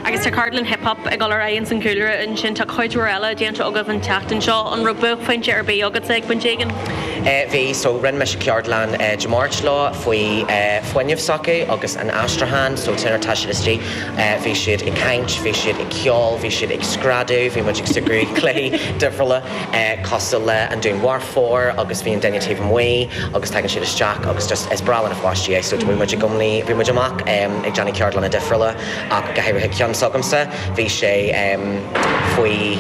Agus tá ceardlann Hip Hop ag dul ar aghaidh ins an gcúlra ansin. Tá cuid mhór eile déanta agaibh an tseachtain seo. An raibh buaicphointe ar bith agatsa ag pointe éigin? Bhí, so rinne mise ceardlann Dé Máirt leo faoi fuinneamh s'acu agus an aistriúchán. So tigeann siad istigh, bhí siad ag caint, bhí siad ag ceol, bhí siad ag screadadh, bhí muid ag súgradh, cluichí difriúla. cosúil le an dúnmharfóir agus bhí an duine taobh amuigh agus tagann siad isteach agus just is breá le na pháistí é so bhí muid i gcónaí, bhí muid amach ehm ag déanamh ceardlanna difriúla ach go háirithe ceann s'agamsa bhí sé ehm faoi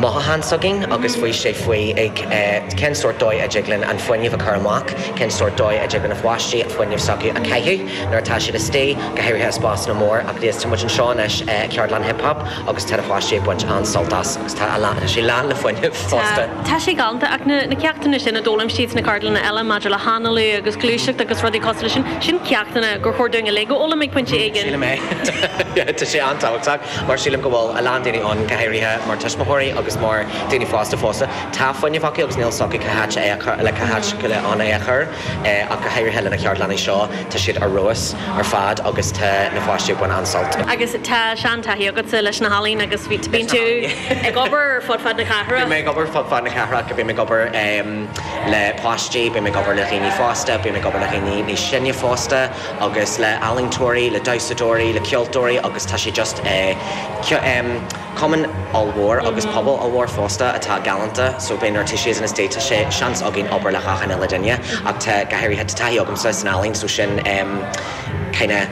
mothucháin s'againn agus bhí sé faoi ag eh cén sórt dóigh a dtig linn an fuinneamh a chur amach, cén sórt dóigh a dtig le na pháistí an fuinneamh s'acu a chaitheamh nuair atá siad istigh go háirithe i spásanna mór ach anois tá muid anseo anois eh ceardlann hip hop agus tá na páistí ag baint an-sult as agus tá sé lán le fuinneamh fosta. Tá sé galanta ach na ceachtanna sin a d'fhoghlaim siad sna ceardlanna eile maidir le hanálú agus gluaiseacht agus rudaí cosúil le sin, sin ceachtanna gur chóir dúinn uilig a fhoghlaim ag pointe éigin. Sílim é. Tá sé an-tábhachtach mar sílim go bhfuil a lán daoine ann, go háirithe mar tuismitheoirí agus mar daoine fásta fosta, tá fuinneamh acu agus níl fhios acu cá háit le cá háit le é a chur. ach go háirithe le na ceardlanna seo, tá siad ar fheabhas ar fad agus tá na páistí ag baint an-sult. Agus tá sean-taithí agatsa leis na healaín agus bíonn tú ag obair fud fad na cathrach. Bíonn mé ag obair fud fad na cathrach, bím ag obair le páistí, bím ag obair le dhaoine fásta, bím ag obair le dhaoine níos sine fosta agus le ealaíontóirí, le damhsadóirí, le ceoltóirí agus tá sé just Cumann ollmhór agus pobal ollmhór fosta atá galánta so beidh nuair tá sé ins na estates tá seans againn obair le achan uile duine ach tá go háirithe tá taithí agamsa san ealaín so sin em kinda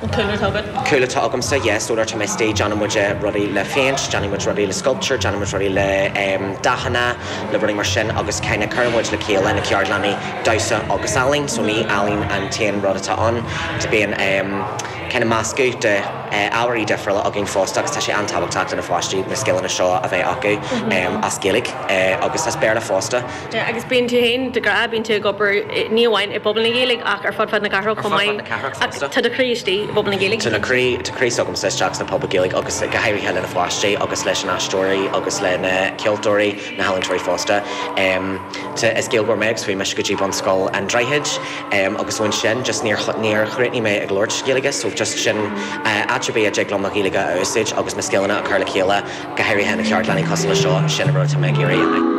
an cúlra atá agat. cúlra atá agamsa yeah so nuair tá mé istigh déanann muid rudaí le péint déanann muid rudaí le sculpture déanann muid rudaí le em dathanna le rudaí mar sin agus kinda cuireann muid le chéile na ceardlannaí damhsa agus ealaín so ní ealaín an t-aon rud atá ann bíonn em kinda meascadh de ábhairí difriúla againn fosta agus tá sé an-tábhachtach do na pháistí na scileanna seo a bheith acu as Gaeilge agus as Béarla fosta. Agus bíonn tú féin, de ghnáth, bíonn tú ag obair ní amháin i bpobal na Gaeilge ach ar fud fad na cathrach chomh maith. Ar fud fad na cathrach fosta. Ach tá do chroí istigh i bpobal na Gaeilge. Tá do chroí s'agamsa isteach sna pobail Gaeilge agus go háirithe le na pháistí agus leis na haisteoirí agus le na ceoltóirí. na healaíontóirí fosta. Sea, is Gaeilgeoir mé agus chuaigh mise go dtí Bunscoil an Droichid agus ón sin just níor níor chríochnaigh mé ag labhairt Gaeilge so just sin áit ar bith a dtig liom mo Ghaeilge a úsáid agus mo scileanna a chur le chéile go háirithe i gceardlannaí cosúil leis seo, sin an rud atá mé ag iarraidh a.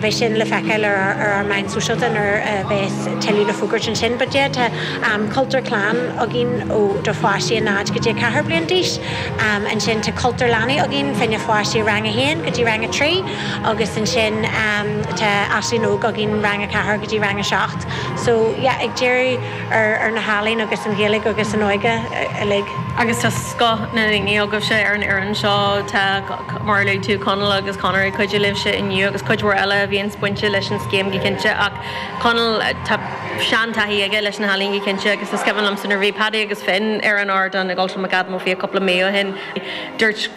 Beidh sin le feiceáil ar ár meáin sóisialta nuair a bheas tuilleadh le fógairt ansin. But yeah, tá cultúr clann againn ó do pháistí a náid go dtí a ceathair bliain d'aois. Ansin tá cultúr leanaí againn fá choinne páistí rang a haon go dtí rang a trí agus ansin tá Aisling óg againn rang a ceathair go dtí rang a seacht. So yeah, ag díriú ar na healaín agus an Ghaeilge agus an óige uilig. Agus tá scoth na ndaoine agaibhse ar an fhoireann seo. Tá. Mar a luaigh tú, Conall agus Conor, ag cuidiú libhse inniu agus cuid mhór eile a bhíonns bainte leis an scéim go cinnte ach Conall tá sean-taithí aige leis na healaíon go cinnte agus is cuimhin liomsa nuair a bhí Paddy agus Finn ar an ardán i gCultúrlann McAdam Ó Fiaich cúpla mí ó shin dúirt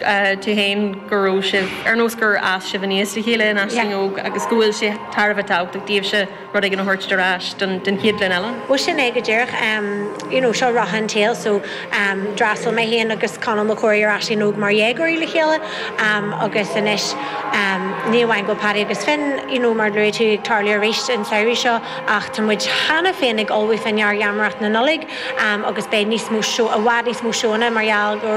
tú féin go raibh sibh ar nós gur fhás sibh aníos le chéile in aisling óg agus go bhfuil sé thar a bheith tábhachtach daoibhse rud éigin a thabhairt ar ais don chéad ghlúin eile. Bhuel sin é go díreach, you know seo rotha an tsaoil so d'fhreastail mé féin agus Conall Mac Corraidh ar Aisling Óg mar dhéagóirí le chéile agus anois ní amháin go bhfuil Paddy agus Finn you know mar a luaigh tú ag tarlú arís an samhradh seo ach tá muid cheana féin ag ullmhú fá choinne gheamaireacht na Nollag agus beidh níos mó seó, i bhfad níos mó seóanna mar gheall go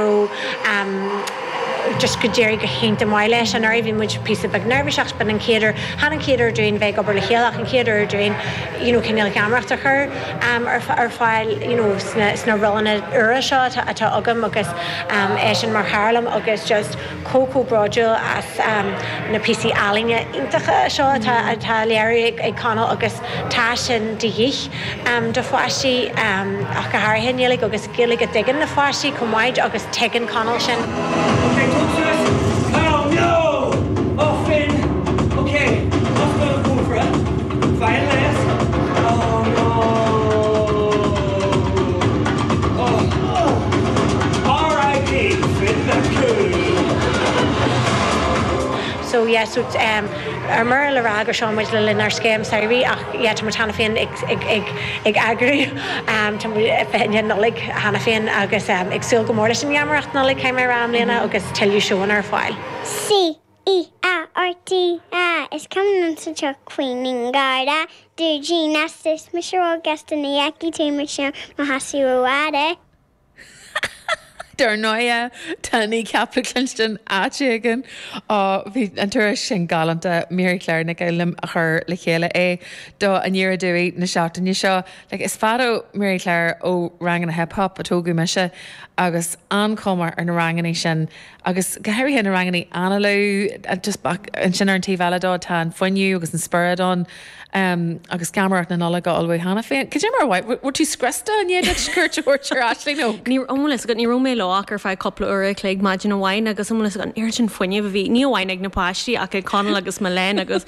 raibh just go d'éirigh go hiontach maith leis. Anuraidh bhí muid píosa beag neirbhíseach agus b'in an chéad uair, chan an chéad uair dúinn bheith ag obair le chéile ach an chéad uair dúinn you know cinéal geamaireacht a chur ar fáil you know sna sna rólanna úra seo atá atá agam agus eisean mar chara liom agus just chomh bródúil as na píosaí ealaíne iontacha seo atá á léiriú ag Conall agus tá sin de dhíth do pháistí ach go háirithe i nGaeilge agus Gaeilge a dtuigeann na pháistí chomh maith agus tuigeann Conall sin. Okay, tosaíos Oh no! Oh Finn! Okay, amach leis an gcófra, fáigh an léas Oh no! So yeah so ar mire le rá gur seo muid le linn ár scéim samhraidh ach yeah tá muid cheana féin ag eagrú tá muid ar 29 Nollaig cheana féin agus ag súil go mór leis an gheamaireacht Nollag caithfidh mé a rá i mbliana agus tuilleadh seóanna ar fáil. Sea. E A R T A, is cuma liom sa tsioc faoi aon gharda dúidín lasta is mise ró ghasta ní fheicfidh tú mise i mo sheasamh ró fhada. Dar ndóighe, tá Kneecap le cluinstin áit éigin. Ó, bhí an turas sin galánta. Mary Claire Nic Fhoghlum a chuir le chéile é do Aniar Aduaidh na seachtaine seo. Like, is fada, Mary Claire, ó ranganna hip-hop a tógadh mise, agus an-chuma ar na rangannaí sin. agus go háirithe na rangannaí análaithe just ach ansin ar an taobh eile de tá an fuinneamh agus an spiorad ann em agus geamaireacht na Nollag á ullmhú cheana féin. Cad é mar a mhothaigh, an bhfuil tú scriosta i ndiaidh duit cuairt a thabhairt ar Aisling nó? Ní raibh, bhfuil 'fhios agat, ní raibh mé leo ach ar feadh cúpla uair a chloig maidin amháin agus bhfuil 'fhios agat an oiread sin fuinnimh a bhí ní amháin ag na páistí ach ag Conall agus Milène agus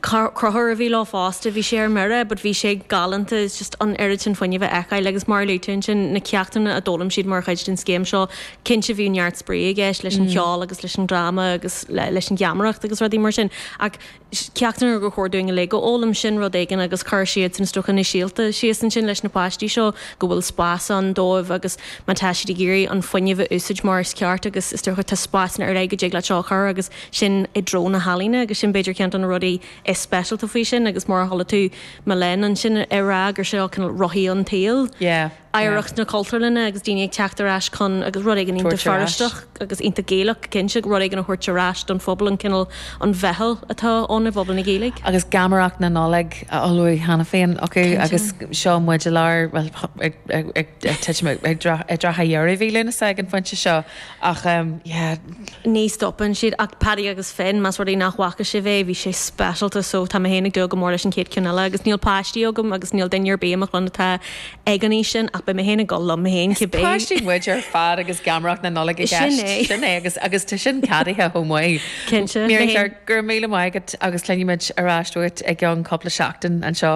Conchúr a bhí leo fosta bhí sé ar mire but bhí sé galánta just an oiread sin fuinnimh a fheiceáil agus mar a luaigh tú ansin na ceachtanna a d'fhoghlaim siad mar chuid den scéim seo Cinnte bhíodh neart spraoi i gceist leis an cheol agus leis an dráma agus leis an gheamaireacht agus rudaí mar sin ach ceachtanna ar chóir dúinn uilig a fhoghlaim sin rud éigin agus cuireann siad is dócha na síolta síos ansin leis na páistí seo go bhfuil spás ann dóibh agus má tá siad ag iarraidh an fuinneamh a úsáid mar is ceart agus is dócha tá spásanna ar leith go dtig leat seo a chur agus sin i dtreo na healaíne agus sin b'fhéidir ceann de na rudaí is speisialta faoi sin agus mar a thoiligh tú mo linn ansin ag rá gur seo cineál rothaí an tsaoil yeah. oidhreacht na Cultúrlainne agus daoine ag teacht ar ais chugainn agus rud éigin iontach Feirsteach agus iontach Gaelach go cinnte, rud éigin a thabhairt ar ais don phobal, an cineál, an mheitheal atá ann i bpobal na Gaeilge. Agus geamaireacht na Nollag á ullmhú cheana féin acu agus seo muid i lár, bhuel, ag titim i dtrátha dheireadh mhí Lúnasa ag an phointe seo. Ach em yeah. Ní stopann siad ach Paddy agus Finn, más rud é nach bhfaca sibh é, bhí sé speisialta so tá mé féin ag dúil go mór leis an chéad ceann eile agus níl páistí agam agus níl duine ar bith i mo chlann atá ag an aois sin ach beidh mé féin ag dul liom féin cibé. Is páistí muid ar fad agus geamaireacht na Nollag i gceist, Sin é. sin é agus agus tá sin ceadaithe chomh maith. Cinnte, Mary, go raibh míle maith agat agus cluinfimid ar ais uait i gceann cúpla seachtain anseo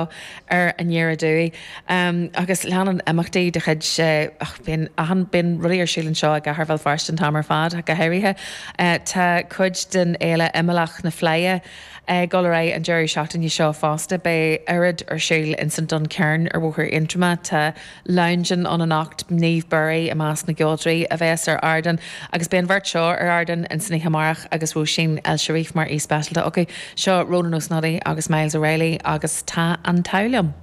ar an aer aduaidh. Agus leanann imeachtaí de chuid ach bíonn achan bíonn rudaí ar siúl anseo i gcathair Bhéal Feirste an t-am ar fad ach go háirithe. Tá cuid den fhéile imeallach na Fleidhe ag dul ar aghaidh an deireadh seachtaine seo fosta. Beidh oiread ar siúl ins an Duncairn ar Bhóthar Aontroma. Tá Long Gone ann anocht, Niamh Bury i measc na gceoltoirí a bheas ar ardán agus beidh an bheirt seo ar ardán ins an oíche amárach agus Róisín El Cherif mar aoi speisialta acu. Seo Rónán Ó Snodaigh agus Myles O'Reilly agus tá an t-adh liom.